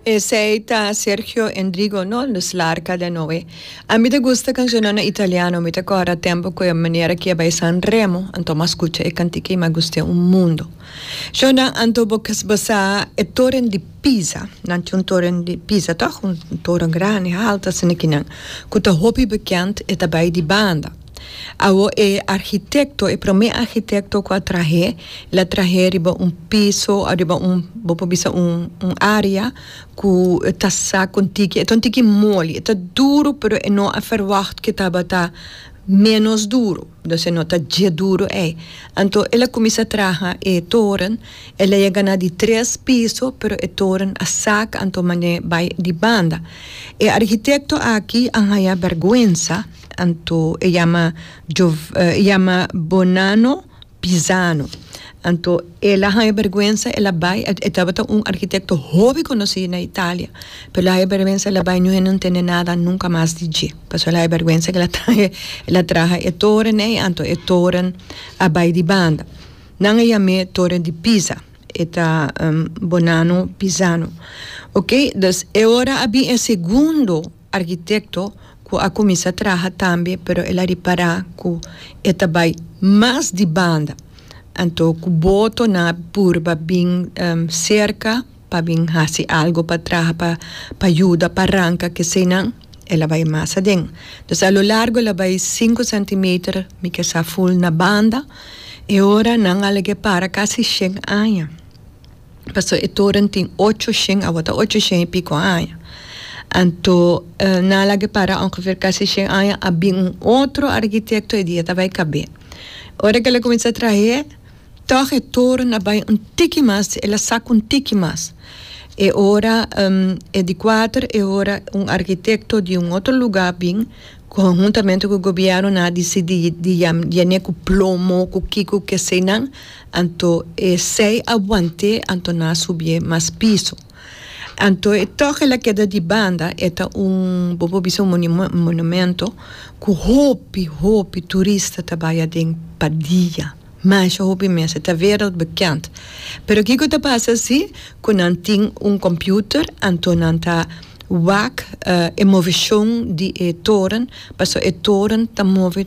Esei ta Sergio Endrigo no nos larga den oe. A mi ta gusta cancionnan italiano, mi ta corda tempo cu e manera ki e bai San Remo, anto mas scucha e cantica y mas guste un mundo. Shownan anto bo kes basa e toren di Pisa, nan tin un toren di Pisa toch? Un toren grandi, halta asina kinan, cu ta hopi bekend, e ta bai di banda. Awo e arhitekto, e promé arhitekto ku a trah'é, el a trah'é riba un piso òf riba un, bo por bisa un, un área ku ta sa kon tiki, e ta un tiki moli, e ta duru pero e no a ferwagt ku tabata ménos duru, entonces no ta dje duru ei. Anto el a kuminsá traha e toren, el a yega na di tres piso pero e toren a saka anto manera bai di banda. E arhitekto aki a haña bèrgwensa. Anto e yama e yama Bonano Pisano. Anto el a haya berguensa el a bai e tabata un arkitekto hopi konosí na Italia pero el a haya berguensa el a bai ñu hende no tende nada nunka mas di dje pasobra el a haya berguensa el a traha el a traha e torennan i anto e toren a bai di banda nan a yam'é Torre di Pisa e ta Bonano Pisano okay dus e ora a bin e segundo. Arkitekto ku a kuminsá traha tambe pero el a ripará ku e ta bai mas di banda anto ku boto nan a purba bin serka pa bin hasi algu pa traha pa pa yuda pa ranka keseinan el a bai mas aden entonces a lo largo el a bai sinku sentimeter mi ke sa ful na banda e ora nan alege para kasi shen aña paso e toren tin ocho shen awa ta ocho shen i pico aña anto nan a laga e para ongeveer casi shen aña a bin un otro arquitecto e dia ta bay cab'e ora que el a cuminsa trahe tog e toren a bay un tiki mas si el a saca un tiki mas e ora e di cuater e ora un arquitecto di un otro lugar a bin conhuntamente cu gobierno nan a dicidi di yam'e cu plomo cu kico cu kesey nan. Anto e sei abuanté anto na subié mas piso. Anto e tòrhe la keda di banda, e ta un, bo por bisa un monimo, monumento ku hopi, hopi turista ta bai aden pa dia, masha hopi mes. E ta wereld bekend. Pero kiko ta pasa si ku nan tin un kòmpiuter anto nan ta wak e moveshon di e toren, pasobra e toren ta move.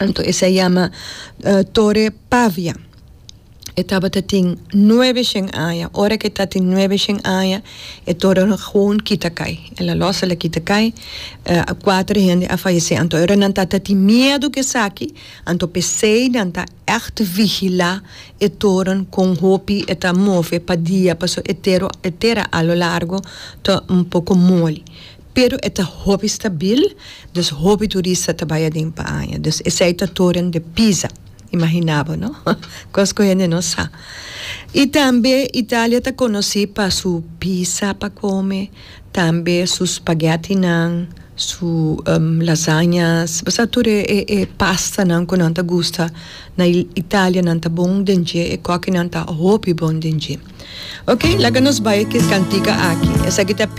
Anto esei yama Tore Pavia. E tabata tin nuebe shen aña. Ora ke ta tin nuebe shen aña e torenan a gewoon kita kai. El a lòs el a kita kai. Kuater hende a fayesé. Anto e ora nan ta ta tin miedu ku esaki, anto p'esei nan ta ègt vigilá e toren kon hopi e ta move pa dia pasobra e tera a lo largo ta un poko moli. Pero e ta hopi stabil, dus hopi turista ta bai aden pa aña. Dus esei ta Toren de Pisa. Imaginá bo no? Kos ku hende no sa. I tambe Italia ta konosí pa su pisa pa kome, tambe su spaghetinan, su lasañas. Bo sa tur e pastanan ku nan ta gusta na Italia nan ta bon den dje, e kòkinan ta hopi bon den dje. Oke, laga nos bai e kantika aki. Esaki ta.